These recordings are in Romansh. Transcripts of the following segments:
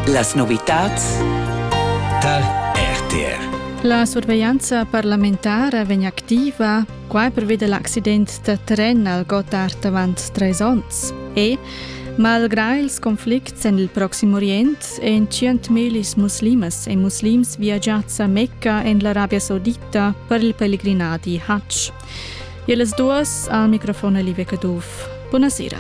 Las novitads tar RTR. La surveglianza parlamentara vegn activa quai pervi da l'accident da tren al Gottard avant trais onns. E Malgrà ils conflicts en il Proxim Orient èn 100.000 muslimas e muslims viagiads a Mecca en l'Arabia Saudita per il pellegrinadi Hajj. E las duas al microfon Olivia Caduff. Bună seara!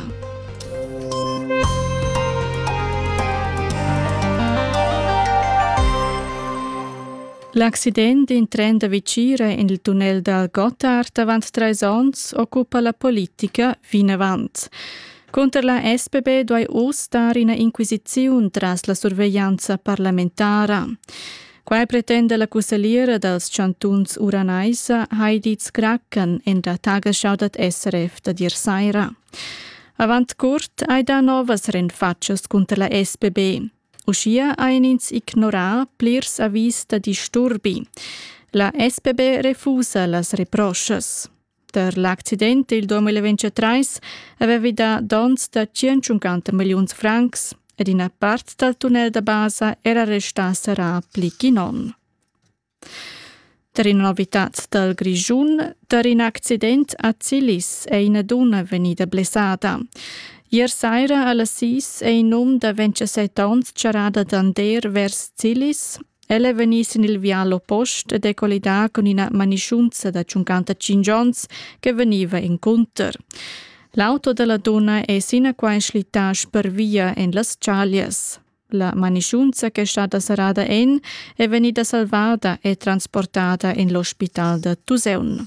L'accident in tren da Vicire in il tunnel dal Gotthard avant trais onns occupa la politica vinavant. Cunter la SPB duai uss dar ina inquisiziun tras la surveglianza parlamentara. Quai pretenda la cussagliera dals chantuns Uranaisa Heidi Zkraken in la tagesschau dad SRF da dir saira. Avant curt hai dà novas rinfatschas cunter la SBB. Uschia ein ins ignorà plirs avis da disturbi. La SBB refusa las reproschas. Tar l'accident il 2023 avevi dà donns da 150 milliuns francs ed ina part dal tunnel da basa era restà serrà pli ch'in onn. Tar ina novitad dal Grischun, tar in accident a Zilis è ina dunna vegnida blessada. Ier saira a las 6 è in um da 27 onns charrada d'Ander vers Zilis El è vegnì sin il vial oppost ed è collidà cun ina manischunza da 55 onns che vegniva encunter. L'auto da la dunna è sinaquai schlittà spervia en las chaglias. La manischunza che è stata serrada en è vegnida salvada e transportada en l'ospital da Tuseun.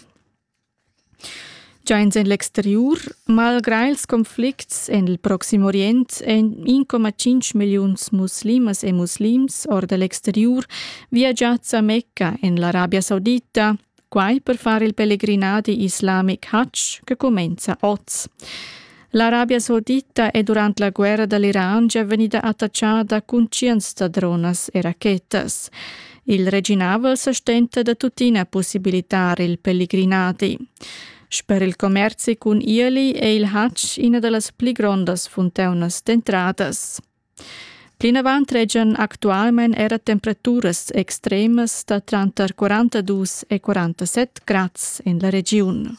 Già ins en l'exteriur, malgrà ils conflicts en il Proxim Orient, èn 1,5 milliuns muslimas e muslims or da l'exteriur viagiads a Mecca en l'Arabia Saudita, quai per far il pelegrinadi islamic hajj che cumenza oz. L'Arabia Saudita è durant la guerra da l'Iran gia vegnida attachada cun tschients da dronas e rachetas. Il reginavel sa stenta da tuttina possibilitar il pellegrinadi. Sper il commerzi cun ieli è il Hajj ina da las pli grondas funtaunas d'entradas. Plinavant regian actualmain era temperaturas extremas da tranter 42 e 47 grads en la regiun.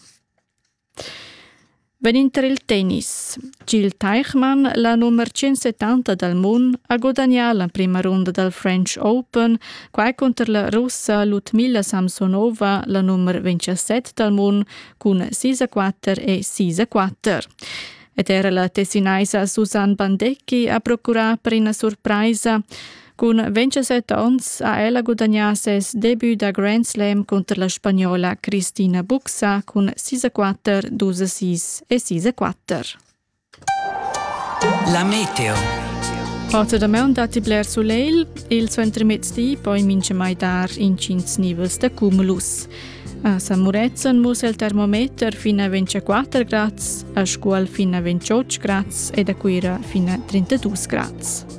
Vegnind tar il tennis ha Gil Teichmann la numer tschensettanta dal mund ha gudagnà l'emprima runda dal French Open, quai cunter la Russa Ludmila Samsonova, la numer vintasset dal mund cun sis a quatter e sis a quatter. Ed era la Tessinaisa Susanne Bandecchi ha procurà per ina surpraisa. Cun 27 onns ha ella gudagnà ses debut da Grand Slam cunter la spagnola Cristina Buxa cun 6-4, 2-6 e 6-4. La meteo. Heute damaun datti bler sulegl, il suentermezdi poi mincha mai dar incins nivels da cumulus. A San Murezzan mussa il termometer fin a 24 grads, a Scuol fin a 28 grads ed a Cuira fin a 32 grads.